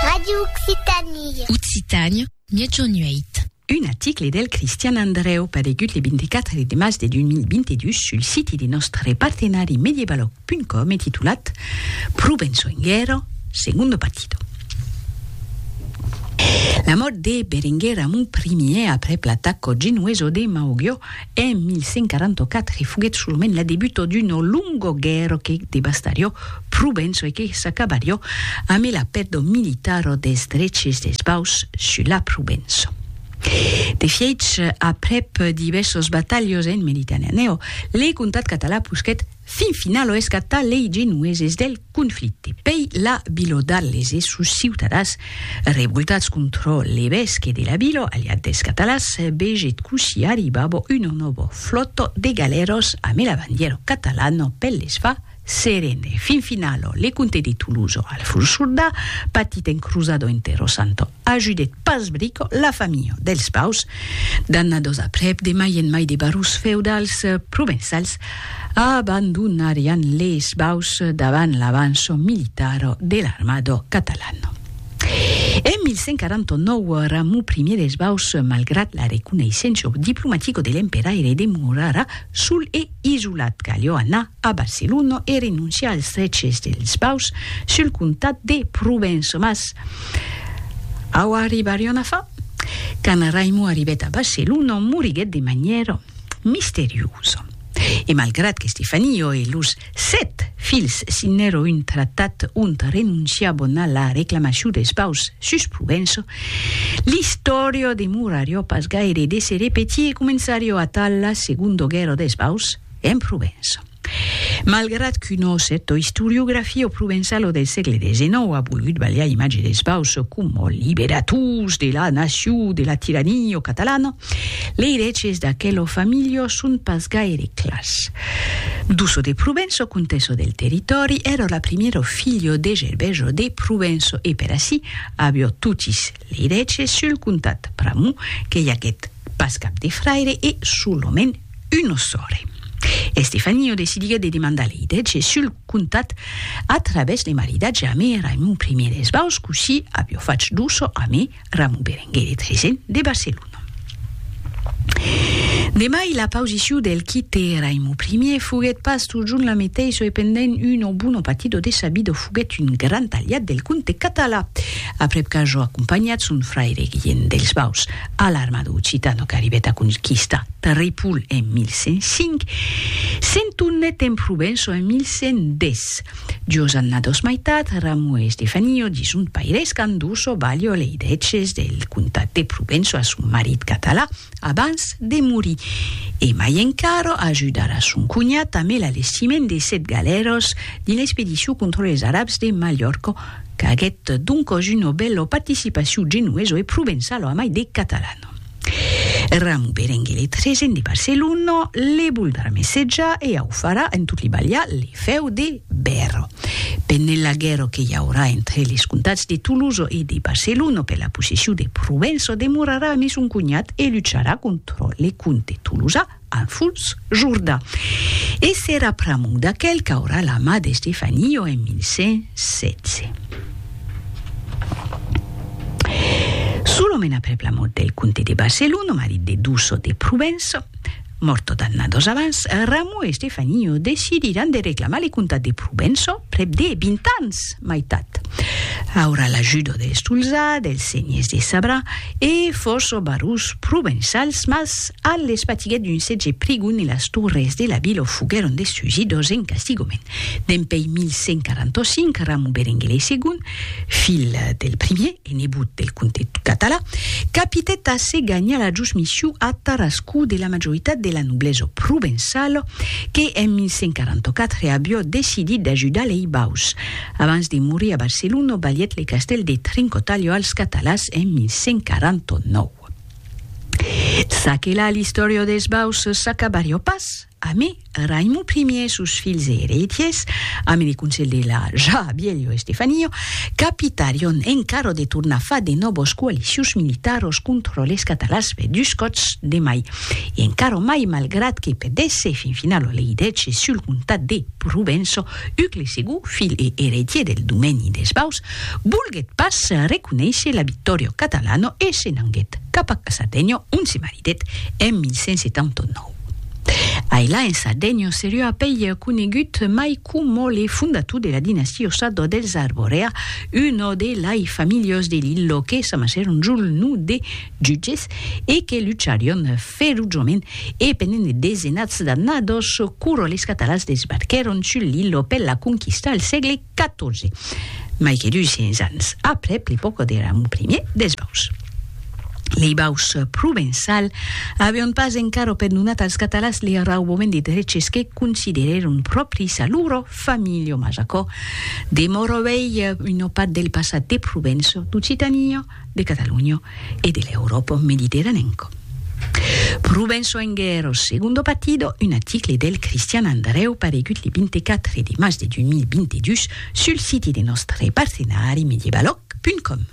Radio Occitanie. Occitània, Miègjorn 8. Un article del Cristian Andrèu paregut le 24 de març de 2022 sul siti de nòstre partenari medievalog.com e titulat Provenço en guèrra, segundo partido. La mòrt de Berenguer Ramon Ier aprèp l'ataco genoeso de Mauguio En 1144 foguèt solament la debuta d'uno longo guèrro que devastarió Provenço e que s'acabarió amé la pèrdua militara des dreches des Baus sus la Provenço. De fièch, aprèp divèrsas batalhas en Mediterranèo, le comtat català posquèt Fin finalo escatar lei genueses del conflicte. Pei la Bilo d'Arles e sos ciutadans revoltats contro l'evesque de la Bilo, aliat des catalans, vegèt cossí arribavo un novo flotto de galèros ame la bandièro catalano per les far serene. Fin finalo le comte de Toulouse, Alfons Surdà, patit en cruzado entre Rosanto ajudèt pas brico la familha dels Paus, d'annados aprèp de mai en mai de barons feudals provençals abandonarián les Paus davant l'avanço militar de l'armada catalana. En 1149, Ramon I dels Paus, malgrat la reconeissença diplomatica de l'emperaire demorarà sol e Isolat calhó anar a Barcelona e renonciar als dreches dels baus sul comtat de Provença. Mas au arribarion a far? Quand Raimon arribèt a Barcelona, moriguèt de manièra misteriosa. E malgrat qu'Estefanio e los sèt filhs signèron un tratat ont renonciavan a la reclamacion dels baus sus Provença, L'istòria demorarió pas gaire de se repetir e començarió atal la Segonda Guèrra des Baus en Provença. Malgrat qu'una cèrta istoriografia provençala del sègle xix a volgut balhar imatge des Baus coma liberators de la nacion de la tirania catalana, lei reches d'aquela familha son pas gaire clars. Duço de Provença, contessa del territòri, èra la primièra filha de Gerbèja de Provença e per ací Avió totis lei dètges sul comtat pr'amor que i aguèt pas cap de fraire e solament una sòrre. Estefanio decidiguèt de demandar lei dètges sul comtat a travèrs de maridatge amé Raimon I d'Esbaus cossí avió fach d'Uso amé Ramon Berenguer de Tresen de Barcelona. De mai, la pausiciu del quite Raimo Primier foguet pas totjorn la meteissa e pendent un o bon o patit o dessabidor foguet un grand aliat del comte català, aprèp qu'ajo acompanhat son fraire Guilhent dels Baus a l'armada occitana qu'arribèt a conquistar Ripoll en 1105, se'n tornèt en Provença en 1110. Jos anna dos maitat, Ramu e Stefanio dison paires qu'an dus o balho lei dètges del comtat de Provenço a son marit catalan abans de morir, e mai encara ajudar a son conhat amb el alestiment de sèt galèros dins l'expedicion contra les arabs de Malhorco qu'aguèt doncos una bèla participacion genoveso e provençalo amai de catalano. Ramu Berenguer le tresen de Barcelona le voldrà messejar e au farà en tot li balhar le fèu de Bèrro. Pendent la guèrra que i aurà entre les comtats de Tolosa e de Barcelona per la possession de Provença demorarà amé son conhat e lucharà contra le comte tolosà, En fuls Jordà. E s'era pr'amor d'aquel qu'aurà la mà d'Estefanio en 1116. Solament aprèp la mòrt del comte de Barcelona, marit de Duço de Provença, mòrt tot d'anna dos abans, Ramon e Estefanio decidiràn de reclamar le comtat de Provença prèp de vint ans. Maitat. Aurà l'ajudo del Solzà, dels senhers de Sabrà e fòrça barons provençals, mas a l'espatiga d'un setge prigon e las torres de la vila foguèron destrusidos en castigament. Dempeis 1145, Ramon Berenguer lei segon, filh del primier, Tenebut del comte Català, capitèt a se ganhar la josmissiu a Tarascú de la majoritat de la noblesa provençala que en 1144 avió decidit d'ajudar lei Baus. Abans de morir a Barcelona balhèt le castèl de Trincotalha als Catalàs en 1149. Çaquelà l'istòria dels Baus s'acabarió pas. Amé, Raimon primier sus filhs e ereitiers, amé de conselh de la ja bielho Estefanio, capitarion encarò de tornar far de nòbos coalicius militaros contro les catalans per dus còts de mai, e encarò mai malgrat que perdèsse fin finalo lei dètges sul comtat de Provenço, uc le segon filh e ereitier del domèni des Baus volguèt pas reconéisher la Vittorio Catalano e se n'anguèt cap a Casategno ont se maritèt en 1179. Ailà en Sardegno serió apèi conegut mai coma le fondator de la dinastia Ossado dels Arborea, uno de lai familhos de Lillo que s'amassèron sul no de jutges e que lucharion ferojament e pendent de desenats d'annados, quoro les catalans desbarquèron sul Lillo per la conquista al sègle 14. Mai que 200 ans aprèp l'epòca de Ramon I dels Baus, lei baus provençal avián pas encara perdonat als catalans li raubament de dreches que considerèron pròpris a loro familha, mas aquò demòra uèi una part del passat de Provença d'Occitania. de Cataluña e de l'Euròpa mediterranenca. Pro ben soenguèr au segundo partido, un article del Cristian Andreu paregut le 24 de mas de 2022 sul siti de nòstre partenari medievaloc.com.